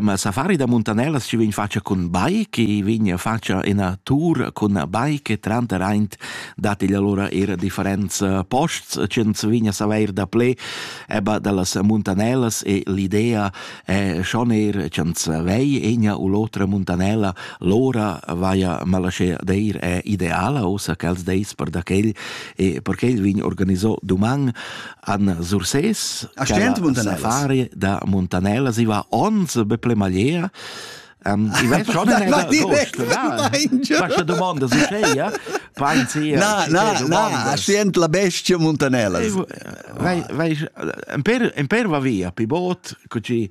Ma safari da muntanellas ci vegn facia cun bai, che vegn facia ina tour cun bai che tranterraint dat igl allora er differents posts, ch'ins vegna saveir da ple eba dallas muntanellas e l'idea è schon er ch'ins vei egna u l'otra muntanella, l'ora vaia malasce deir è ideala, ossa ch'els deis per da quel e per quel vegn organiso duman Anna Sursès, safari da Montanella, si va ons be ple magliera. Um, I vei schon eine Dost, da. Questa domanda su scheia? Pensi, na, na, na, sient la bestia Montanella. Vai, vai, un per, un per va via, pi bot, cuci